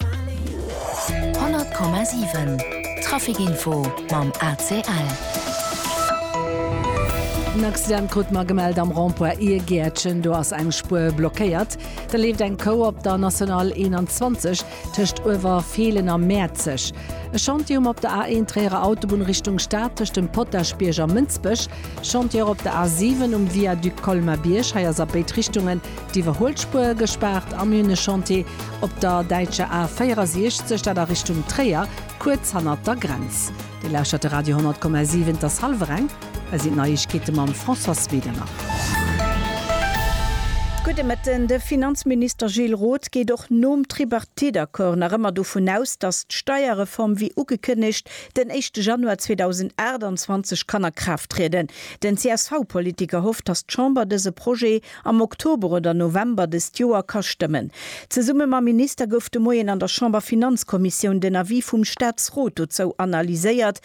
100,7 Trafic Info mam ACL. En Accident krute mer gemellt am Rond-point Iergäertchen. Do ass eng Spuer blockéiert. Da leeft eng Kou op der National 21 tëscht Uewerfeelen a Mäerzeg. E Chantier um op der A1 Tréierer Autobunn Richtung Stad tëscht dem Potaschbierg a Mënsbech. Chantiere op der A7 um Viaduc Colmer-Bierg. Hei ass a béid Richtungen D'Iwwerhuelspuer gespaart am Hühne-Chantier op der däitscher A 64, dat a Richtung Tréier, kuerz hannert der Grenz. Dir lauschtert de Radio 10,7, et ass hallwer eng, hei sinn d'Neiegkeete mam Françoise Wedemer. Gudde Mëtten. De Finanzminister Gilles Roth geet och nom Tripartite-Accord nach ëmmer dovun aus, datt d'Steierreform wéi ugekënnegt den éischte Januar 2028 kann a Kraaft trieden. Den CSV-Politiker hofft, datt d'Chamber dëse Projet Am Oktober oder November dëst Joer ka stëmmen. Zesumme mam Minister gouf de Moien an der Chamberfinanzkommissioun den Avis vum Staatsrot dozou analyséiert,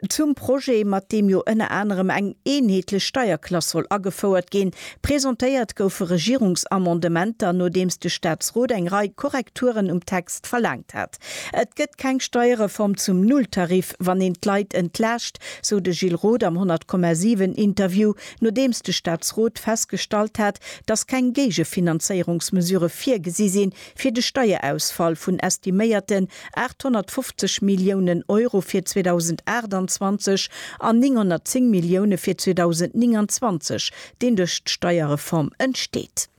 zum Projet, mat deem jo ënner anerem eng eenheetlech Steierklass soll agefouert ginn. Presentéiert goufe Regierungsamendementer, nodeems de Staatsrot eng Rei Korrekturen um Text verlaangt hat. Et gëtt keng Steierreform zum Nulltarif, wann een d'Leit entlaascht, sou de Gilles Roth am 100,7 Interview. Nodeems de Staatsrot festgestallt hat, dass keng Géigefinanzéierungsmesurë virgesi sinn, fir de Steierausfall vun estiméierten 850 Milliounen Euro fir 2028 an 910 Millioune fir 2029, deen duerch d'Steierreform entsteet.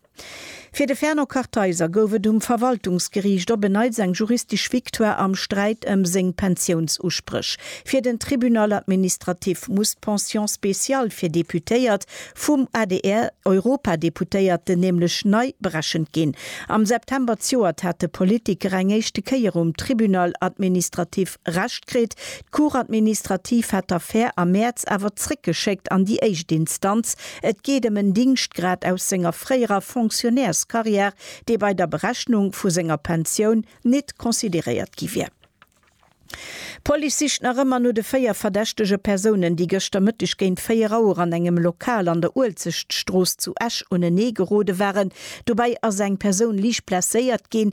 Fir de Fernand Kartheiser gouf et um Verwaltungsgeriicht op en Neits eng juristesch Victoire am Sträit ëm seng Pensiounsuspréch. Fir den Tribunal administratif muss d'Pension spéciale fir Deputéiert vum adr, Europadeputéierten, nämlech nei berechent ginn. Am September zjoert hat de Politiker eng éischte Kéier um Tribunal administratif Recht kritt. D'Cour administrative hat d'Affär am Mäerz awer zréckgeschéckt an déi éischt Instanz. Et geet ëm en Dingschtgrad aus senger fréierer Fonctionnairscarrière, dee bei der Berechnung vu senger Pensioun nit consideréiert gi wier. D'Police sicht nach ëmmer no de véier verdächtege Persounen, déi gëschter Mëtteg géint 4 Auer an engem Lokal an der Uelzechtstrooss zu Esch unenee gerode waren. Dobäi ass eng Persoun liicht blesséiert ginn.